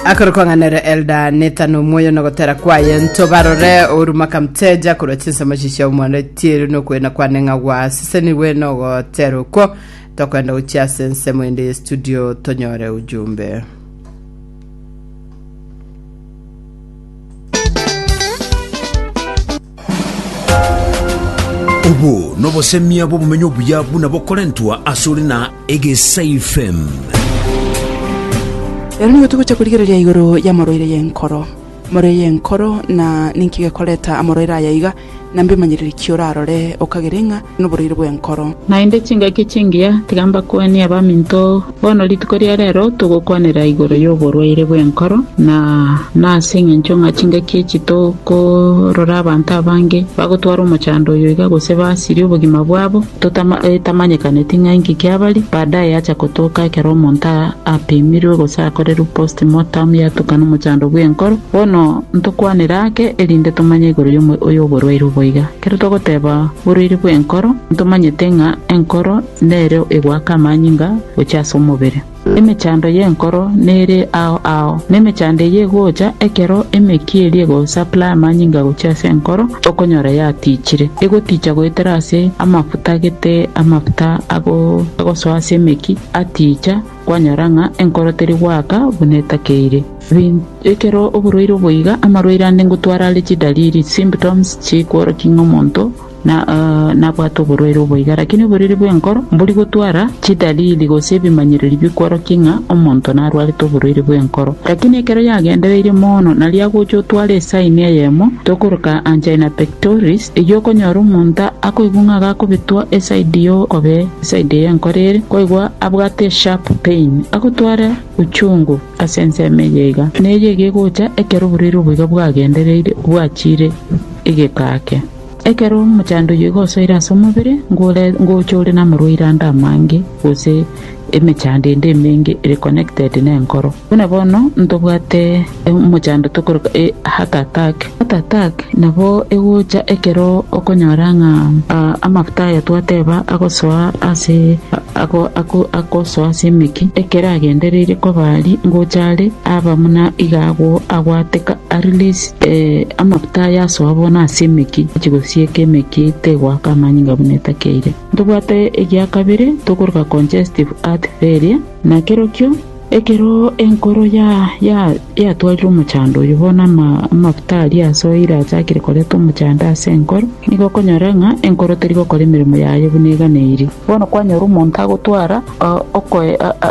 akoro kong'anera elda netano omwoyo nogotera kwaye ntobarore oruma kamteja korwa chinsemo chichia omwana tieri nokwena kwane ng'a gwasisenirwe nogotera okwo tokwenda gochia ase ensemo ende ye studio tonyore ujumbe Obo nobosemia bw'obomenyo obuya buna bokorentwa asore na Egesaifem. Ero nigo togocha korigereria igoro y'amoroire y'enkoro. Amoroire y'enkoro na ninki gekoreta amoroire aya iga? Na mbimanyereri ki orarore okagere ng'a noboraire bw'enkoro? Naende chingaki chingiya, tiga mbakwanie abaminto, bono rituko ria reero togokwanera igoro y'oborwaire bw'enkoro, na nase engencho ng'a chingaki echi tokorora abanto abange bagotwara omochando oyo iga gose basirie obogima bwabo, etamanyekaneti ng'a inki kiabaria, baadaye yacha gotoka ekero omonto apemirwe gose akorerwe post-mortem yatuka nomochando bw'enkoro. Bono. Ntokwanere ake erinde tomanye igoro y'oborwaire obo iga. Ekero togoteba borwaire bw'enkoro, ntomanyete ng'a enkoro nere egoaka amanyinga gochia ase omobere. Emechando y'enkoro nere ao ao, na emechando eyio egocha ekero emeki eria egosupply amanyinga gochia ase enkoro, okonyora yatichire. Egoticha goetera ase amafuta gete amafuta agosoa ase emeki aticha. Kwanyora ng'a enkoro teri goaka buna etakeire. Bin. Ekero oborwaire oboiga, amarwaire ande ngotwara are chidaliri, symptoms, chikworokia ng'a omonto na, uh, nabwate oborwaire oboiga. Lakini oboriri bw'enkoro mbori gotwara chidaliri gose ebimanyererio bikworokia ng'a omonto narwarete oborwaire bw'enkoro. Lakini ekero yagendereirie mono, nari agocha otware esaini eyemo tokoroka angina pectoris, eyio okonyora omonto akoigwa ng'a gakobetwa esaidi y'okobee. Side eye enkoro ere koigwa abwate sharp pain agotware uchungu ase ensemo eye iga na eye iga egocha ekero oborwaire obo iga bwagendereire bwachire egeka ake. Ekero omochando oyio iga osoire ase omobere ngore ngocha ore namorwaire ande amange gose emechando ende emenge ere connected nenkoro. Buna bono ntobwate. emochandoto korwa Hatatak. Hatatak nabo egocha ekero okonyora ng'a amafuta aya twateba agosoa ase agosoa ase emeki, ekero agendereirie koba aria ngocha are, aba buna iga agwo agwateka, arelease amafuta aya asoa bono ase emeki gochia gosieka emeki tegoaka amanyinga buna etakeire. Ntobwate egia kabere tokoroka congestive heart failure, nakerokio. Ekero enkoro yatwarire omochando oyio, bono amafuta aria ase oil achakire koreta omochando ase enkoro, nigo okonyora ng'a enkoro teri gokora emeremo yaye buna eganeirie. Bono kwanyora omonto agotwara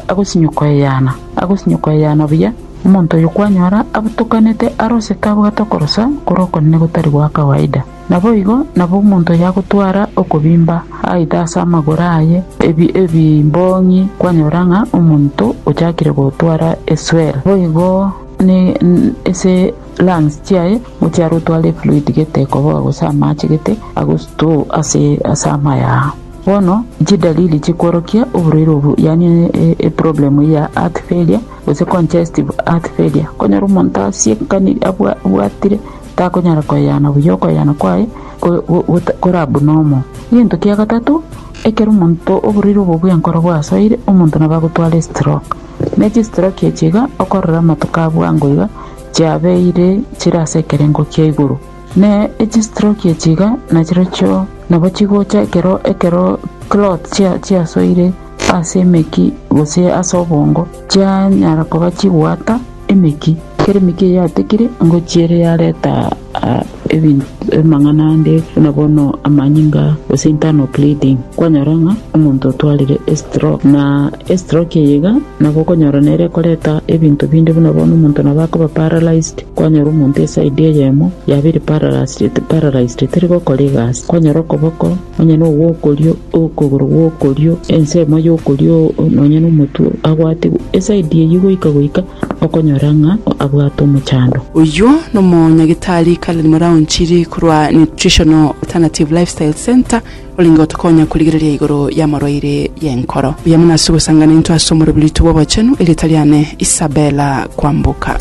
agosinyo koyeyana, agosinyo koyeyana buya, omonto oyio kwanyora abotokanete arosete abwate okorosa kore okonene gotari gwa kawaida. Naboigo nabwo omonto oyagotwara okobimba aite ase amagoro aye ebi ebimbong'i kwanyora ng'a omonto ochakire gotwara eswel, boigo ne ase lungs chiaye mochiare otware efluid gete ekoboa gose amache gete agosto ase ase amayao. Bono chidalili chikworokia oborwaire obwo yaani eproblem eyio ya heart failure gose congestive heart failure, konyora omonto asiekani abwa abwatire. takonyara koyana buya okoyana kwaye koraba buna omo. Gento kia gatato, ekero omonto oborwaire obo bw'enkoro bwasoire, omonto nabo agotwara estroke. Ne chistroke echi iga okorora amato ka bwango iga chiabeire chire ase ekerengo kia igoro. Ne echistroke echi iga nachirochio nabo chigocha ekero ekero clot chia chiasoire ase emeki gose ase obongo chianyara koba chibwata, Emeki, kera emeki eyatekire ngochia ere yareta amang'ana ande buna bono amanyinga gose internal bleeding, kwanyora ng'a omonto otwarire estroke. Na estroke eye iga nabo okonyora nere ekoreta ebinto binde buna bono omonto nabo akoba paralysed, kwanyora omonto eside eyemo yaba ere paralysed teri gokora egasi, kwanyora okoboko. Onye nogwokorio okogoro gw'okorio, ensemo y'okorio nonya nomotwe agwatigwe esaidi eyio goika goika okonyora ng'a abwate omochando. Oyio nomonyagitari Karen Muraunchiri korwa Nutritional Alternative Lifestyle Centre orenge gotokonya korigereria igoro y'amarwaire y'enkoro. Buya mono ase ogosangana intwe ase omoroberitwe bw'obochenu, erieta riane Isabella Kwamboka.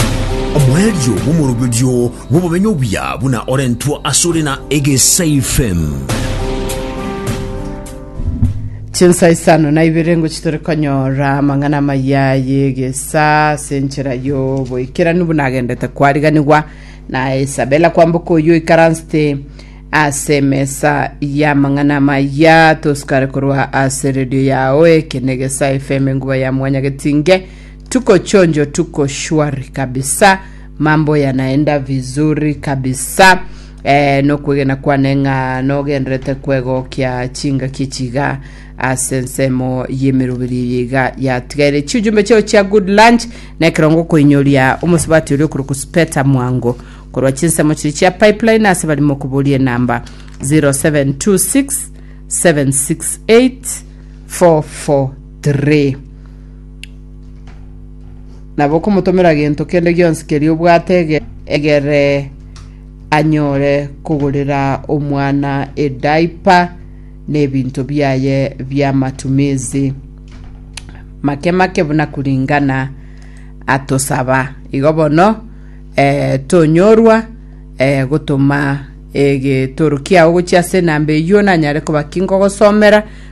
Omoerio bw'omoroberio. bw'obomenyo obuya buna orentwa asore na egesaife. Chinsa isano na ibere ngochi tore konyora amang'ana amaya y'egesa ase enchera y'oboikeranu buna agendete kwariganigwa na Isabella kwamboka oyio ikaransete ase emesa y'amang'ana amaya tosukare korwa ase redio yao eke negesa FM enguba ya mwanya getinge tuko chonjo tuko shwari kabisa Mambo yanaenda vizuri kabisa eh, nokwegena kwane ng'a nogenderete kwegokia chingaki chiga ase ensemo y'emeroberi eye iga yatigaire chiujumbe chao chia good lunch na ekerongo koinyoria omosubati oria okorokwa speta mwango korwa chinsemo chiri chia pipeline ase barimo koboria enamba 0726 768 443 Nabo komotomera gento kende gionsi keria obwate ege- egere anyore kogorera omwana edaipa na ebinto biaye bi'amatumizi make make buna kuringana atosaba igo bono eh, tonyorwa eh, gotoma egetoro kiao gochia ase enamba eyio nanyare koba ki ngogosomera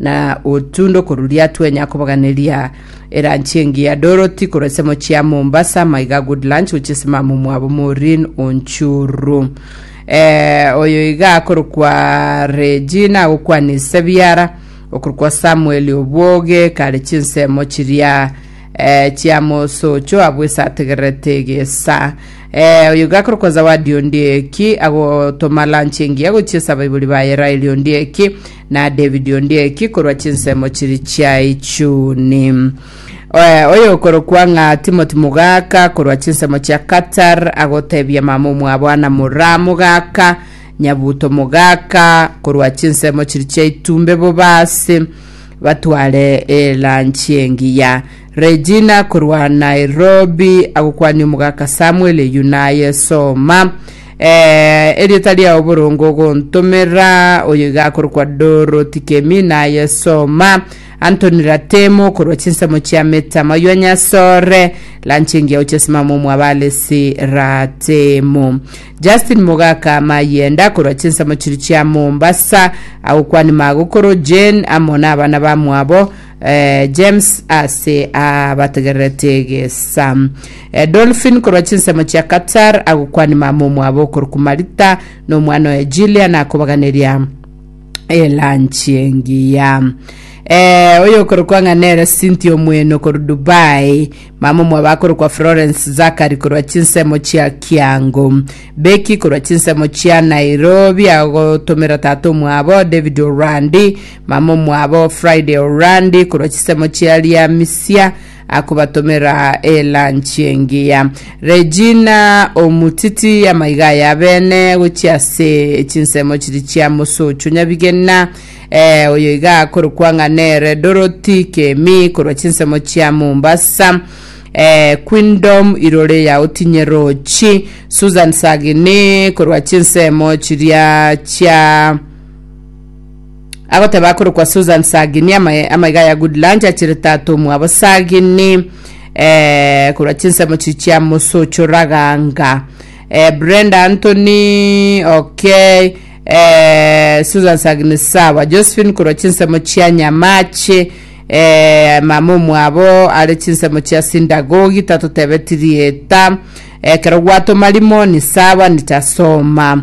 na otunde okoruria twenya kobaganeria eranchi engiya Dorothy korwa ase mochie ya Mombasa maiga good lunch gochia ase mama omwabo Maureen Onchuru eh, oyo iga akorokwa Regina agokwanisa ebiara okorokwa Samuel Obwoge kare chinsemo chiria eh, chia mosocho abwo esa ategererete egesa eh, oyo iga akorokwa Zawadi Ondieki agotoma lunch engiya gochia ase abaibori baye Raeli Ondieki na David Ondieki korwa chinsemo chiri chia Ichuni. Eh, Oyokorokwa ng'a Timothy Mugaka korwa chinsemo chia Qatar agotebia mama omwabo Anna Mura Mugaka, Nyabuto Mugaka korwa chinsemo chiri chia Itumbe Bobasi batware elanchi engiya. Regina korwa Nairobi agokwania omogaka Samuel eyio naye soma eh, erieta riao borongo ogontomera oyo iga akorokwa Dorothy Kemi naye soma Anthony Ratemo korwa chinsemo chia metama oywa nyasore lanchingi yao chesimama omwabalesi Ratemo Justin Mogaka Mayenda korwa chinsemo chiri chia Mombasa agokwania magokoro Jane amo na abana bamwabo Eh, James ase abategererete egesa eh, Dolphin korwa chinsemo chia Qatar agokwani mama omwabo okoruku Marita na omwana oye Jillian akobaganeria elanchi engiya eh, oyo okorokwa ng'a nere sinti omwene okoru dubai mama omwabo akorokwa florence zakari korwa chinsemo chia kiango beki korwa chinsemo chia nairobi agotomera tata omwabo david orandi Mama omwabo Friday Orandi korwa chisemo chia Liamisia akobatomera elanchi engiya. Regina omutiti amaiga aya abene gochia ase chinsemo chiri chia Mosocho Nyabigena eh, oyo iga akorokwa ng'a nere Dorothy Kemi korwa chinsemo chia Mombasa eh, Queendom irore ya Otinye Rochi Susan Sagini korwa chinsemo chiria chia Agoteba akorokwa Susan Sagini amaye amaiga ya Good Lunch achire tata omwabo Sagini eh, korwa chinsemo chi chia Mosocho Raganga eh, Brenda Anthony okay eh, Susan Sagini sawa Josephine korwa chinsemo chia Nyamache eh, mama omwabo are chinsemo chia Sindagogi tatotebetirie eta ekero gwatoma rimoni sawa nitasoma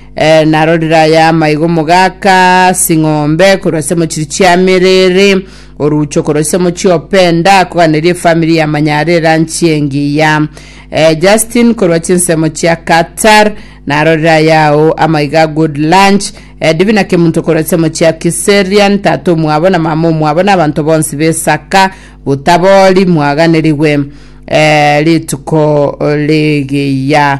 Eh, narorire aya amaigo mogaka ase ing'ombe korwa ase mochiri chia merere orucho korwa ase mochi openda koganeria efamiri ya manyare eranchi engiya eh, justin korwa chinsemo chia qatar narorire ayao amaiga good lunch eh, divina kemunto korwa ase mochi ya kiserian tata omwabo na mama omwabo na abanto bonsi besaka botabori mwaganerigwe eh, rituko rigiya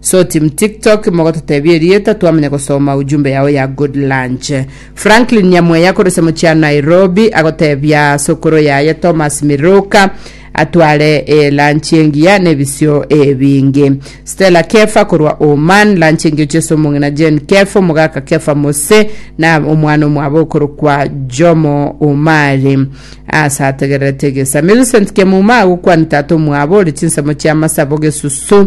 So team tiktok mogototebia erieta twamanya gosoma ujumbe yao ya good lunch. Franklin Nyamweya korese mochia Nairobi agotebia sokoro yaye Thomas Miruka atware e lunch engiya nebisio ebinge. Stella Kefa korwa Oman lunch engiya ochese omong'ina Jane Kefa omogaka Kefa Mose na omwana omwabo okorokwa Jomo Omari ase ategererete egesa. Millicent Kemuma agokwania tata omwabo ore chinsemo chia masabo Gesusu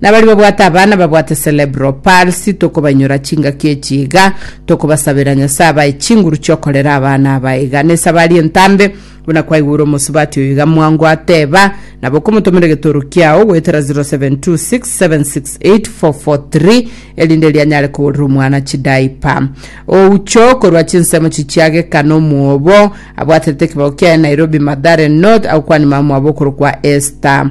Na baria babwate abana babwate cerebral palsy tokobanyora chingaki echi iga, tokobasabera Nyasae abae chinguru chiokorera abana aba iga. Nesabari entambe, buna kwaigure omosubati oyo iga mwango ateba, nabo okomotomera egetoro kiao goetera 0726768443 erinde erio anyare kogorera omwana chidayipa. Oucho korwa chinsemo chichiageka nomwobo abwaterete ekebago kiaye Nairobi Mathare North agokwania mamwabo okorokwa Esther